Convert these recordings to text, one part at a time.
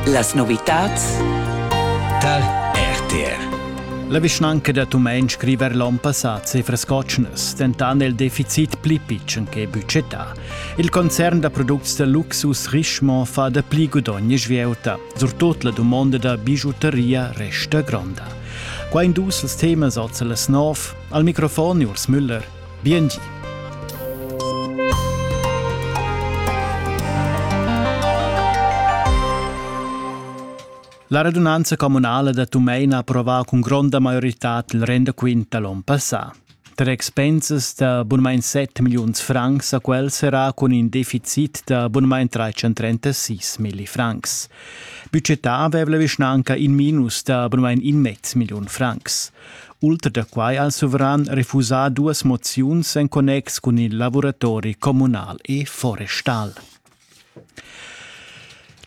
Las novitads tar RTR. La vischnanca da Tumein scriver l'onn passà cifras cotschnas, dentant il deficit pli pitschen che budgetà. Il concern da products da luxus Richemont fa da pli gudogn e svieuta. Surtut la dumonda da bijuteria resta gronda. Qua in dus als temas als las nov. Al microfon Urs Müller. Biengi. La radunanza communala da Tumein ha approvà cun gronda maioritad il rendaquint da l'on passà. Tar expensas da bunamain 7 milliuns francs a quel serà cun in deficit da bunamain 336 milli francs. Budgetà aveva la vischnanca in minus da bunamain in mez milliun francs. Ultra da quai ha il suveran refusà duas moziuns en connex cun il lavuratori communal e forestal.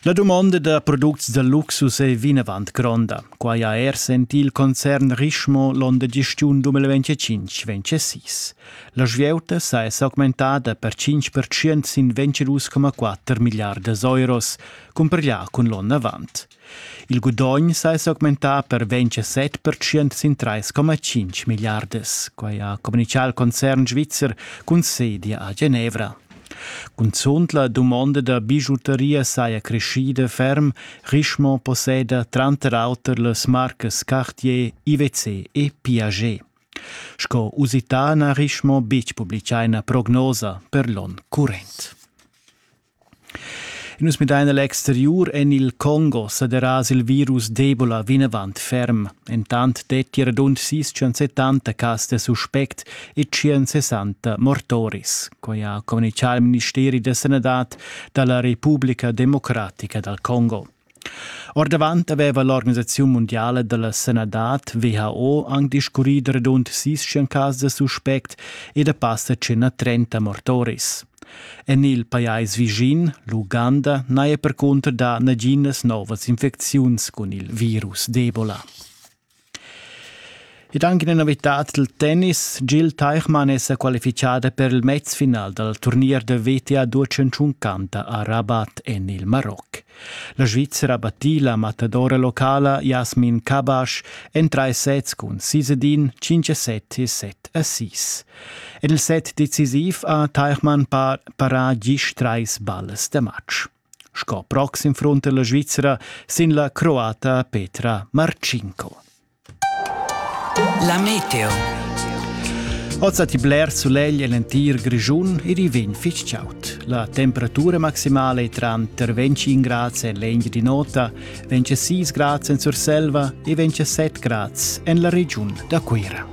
La dumonda da products da luxus è vinavant gronda. Quai ha er sentì il concern Richemont l'onn da gestiun 2025-26. La svieuta sa è s'augmentada per 5% sin 22,4 milliardas euros, cumparglià cun l'onn avant. Il gudogn sa è s'augmentà per 27 pertschient sin 3,5 milliardas. Quai ha communitgà il concern svizzer cun sedia a Genevra. Cunzunt la dumonda da bijuteria saja creschida ferm. Richemont posseda tranter auter las marcas Cartier, IWC e Piaget. Sco usità n'ha Richemont betg publitgà ina prognosa per l'onn current. Nus midain a l'exteriur en il Congo sa deras il virus d'Ebola vinavant ferm. Entant detti radund 670 cas da suspect e 160 mortoris. Quai ha communitgà il ministeri da sanadad da la Repubblica democratica dal Congo. Ordavant aveva l'organisaziun mundiala da la sanadad WHO anc discurrì da radund sis cas da suspect e da passa tschena trenta mortoris. En il pajais vischin, l'Uganda, n'haja percunter dà naginas novas infecziuns cun il virus d'Ebola. Ed anche in novitad dal tennis. Gil Teichmann è sa qualifichada per il mezfinal dal turnier da WTA Duatschentschunkanta a Rabat en il Maroc. La Svizzera battì la matadora locala Jasmin Kabasch en trais sets cun 6 a 5-7 e 7 a 6. En il set decisiv ha Teichmann para gist trais ballas da match. sco proxim frunter la Svizzera sin la croata Petra Marcinko. La meteo. Oza ti bler sulegl en entir Grischun ir i vegn fitg chaut. La temperatura maximale tranter 25 grad en l'engio di nota, 26 grad en Surselva e 27 grad en la regiun da Cuira.